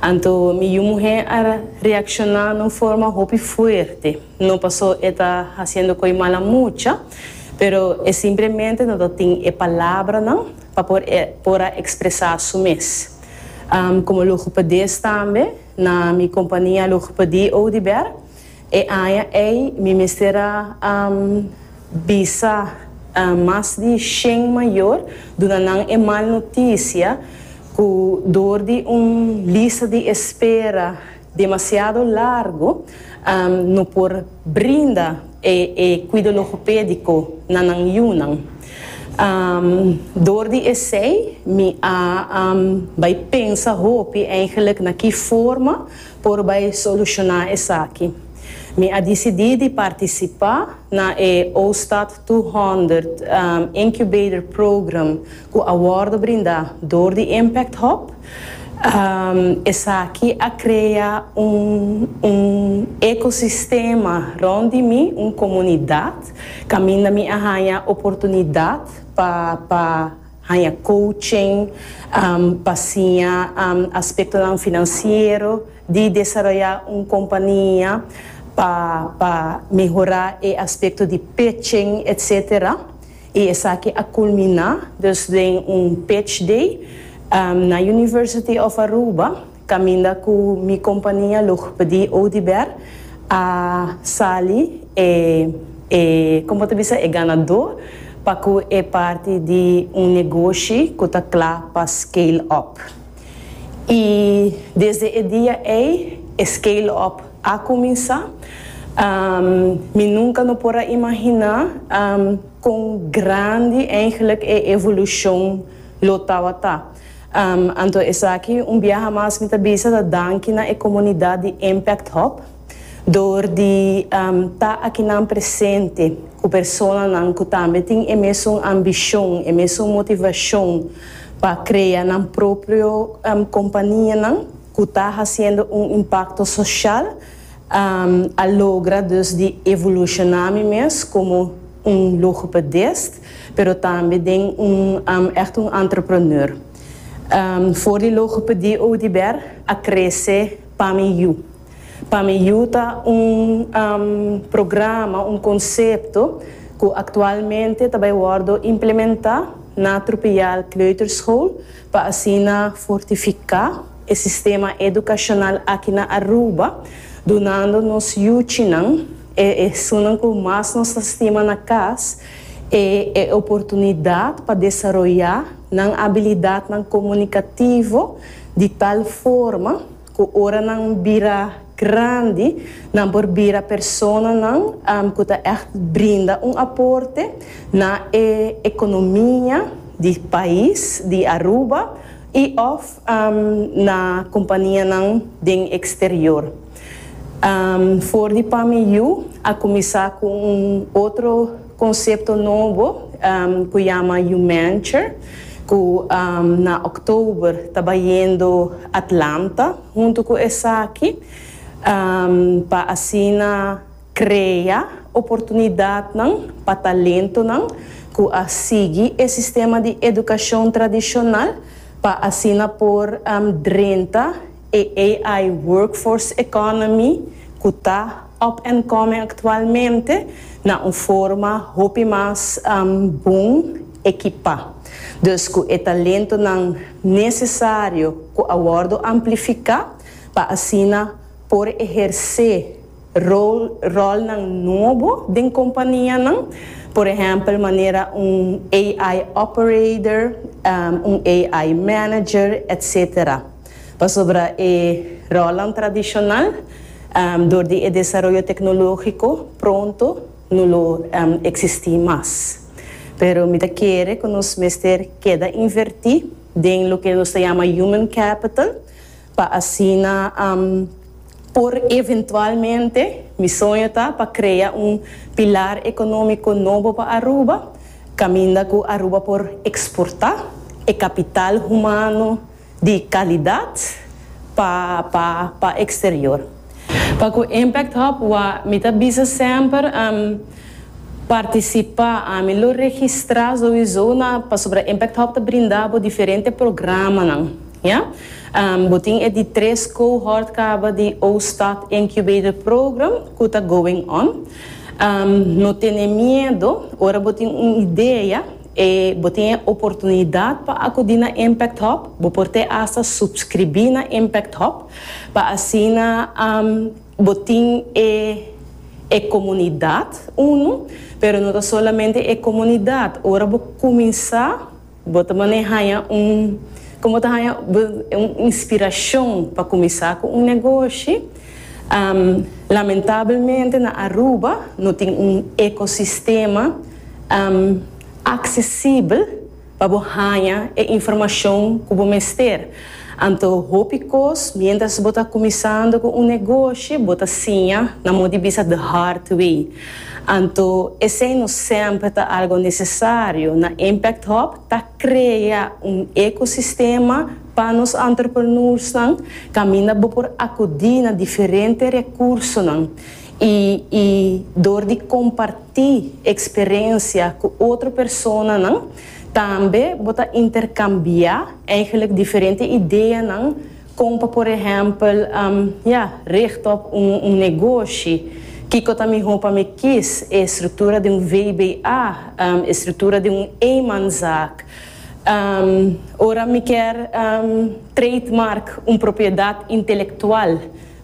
Anto mi yu muhé a reakshoná na un forma hopi fuerte, no pasó e ta hasiendo koe mala mucha, pero e simplemente no ta tin e palabranan pa por por a ekspresá su mes. Komo logopedist tambe na mi kompania logopedie Oudibert, E aña ei mi mester a bisa mas di shen mayor, duna nan e mal noticia cu dor di un lista di espera demasiado largo no por brinda e cuido logopedico na nan yunan. Dor di esey mi a bai pensa hopi eigenlijk na ki forma Por bai solushoná esaki, mi a disidí di partisipá na e Ostad Tweehonderd Incubator Program ku a wòrdu brindá dor di Impact Hub. Esaki a krea un un ekosistema rònt di mi, un komunidat kaminda mi a haña oportunidat pa pa. Haña coaching pa siña aspectonan financiero di desaroya un compania pa pa mehora e aspecto di pitching etc. Y esaki a culmina dus den un pitch day na University of Aruba. Caminda cu mi compania lo pdi Oudibert a sali e e como ta bisa e ganador pa cu e parti di un negoshi cu ta cla pa scale up. Y desde e dia ey e scale up a cuminsa. Mi nunca no por a imagina con grandi eindelijk e evolucion lo tawata. Anto esaki un biaha mas mi ta bisa ta danki na e komunidat di Impact Hub dor di ta akinan presente ku personanan ku tambe tin e mesun ambishon, e mesun motivashon pa krea nan propio kompanianan ku ta hasiendo un impakto soshal a logra dus di evolushoná mi mes komo un logopedist. Pero tambe den un ègt un entrepreneur. For di logopedi Oudibert a krese Pa mi yu. Pa mi yu ta un programa, un konsepto ku aktualmente ta bai wòrdu implementá na Trupial Kleuterschool pa asina fortifiká e sistema edukashonal aki na Aruba, dunando nos yuchinan, E esunnan ku mas nos ta stima na kas e e oportunidat pa desaroyá nan abilidatnan komunikativo di tal forma ku ora nan bira grandi nan por bira personanan ku ta ègt brinda un aporte na e ekonomia di pais di Aruba i òf na kompanianan den eksterior. For di Pami Yu a kuminsá ku un otro konsepto nobo ku yama Yumanture ku na òktober ta bayendo Atlanta huntu ku esaki pa asina krea oportunidatnan pa talentonan ku a sigui e sistema di edukashon tradishonal pa asina por drenta E AI workforce economy cu ta up and coming actualmente na un forma hopi mas bon ekipa. Dus cu e talentonan necesario cu a wordo amplifica pa asina por eherce rolnan nobo den companianan, por ehempel manera un AI operator, un AI manager, etcetera. pasobra e ròlnan tradishonal dor di e desaroyo teknologiko pronto no lo eksistí mas. Pero mi ta kere ku nos mester keda invertí den loke nos ta yama human capital pa asina por eventualmente, mi soño ta pa krea un pilar ekonómiko nobo pa Aruba kaminda ku Aruba por eksportá e kapital humano, di kalidat pa pa pa eksterior. Pa ku Impact Hub wa mi ta bisa semper am partisipá, ami lo registrá souizou na pasobra Impact Hub ta brinda bo diferente programanan, ya. Am bo tin e di tres cohort kaba di Ooststad Incubator Program ku ta going on. Am no tene miedo ora bo tin un idea. E bo tin e oportunidat pa akudí na Impact Hub. Bo por te asta supskribí na Impact Hub pa asina bo tin e e komunidat unu, pero no ta solamente e komunidat. Ora bo kuminsá bo ta manera haña un komo ta haña bo un inspirashon pa kuminsá ku un negoshi. Lamentabelmente na Aruba no tin un ekosistema aksesibel pa bo haña e informashon ku bo mester. Anto hopi kos miéntras bo ta kuminsando ku un negoshi bo ta siña na mo di bisa the hard way. Anto esei no sèmpre ta algo nesesario. Na Impact Hub ta krea un ekosistema. Pa nos entrepreneursnan kaminda bo por akudí na diferente rekursonan i i dor di kompartí eksperensia ku otro personanan tambe bo ta interkambiá eigenlik diferente ideanan kon pa por ehèmpel ya richta op un negoshi kiko ta mihó pa mi kis e struktura di un VBA e struktura di un eenmanszaak Ora mi kier trade mark un propiedat intelectual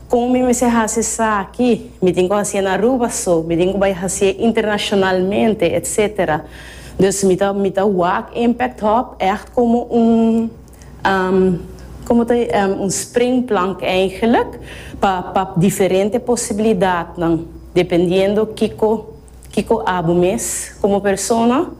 como mi mester haci esaki, mi tin cu hacié na Aruba so, mi tin cu bay hacié internacionalmente etc. Dus mi ta mi ta wak impact hub echt como un como ta un spring plank eigenlijk pa pa diferente posibilidadnan dependiendo kico kico abo mes como persona.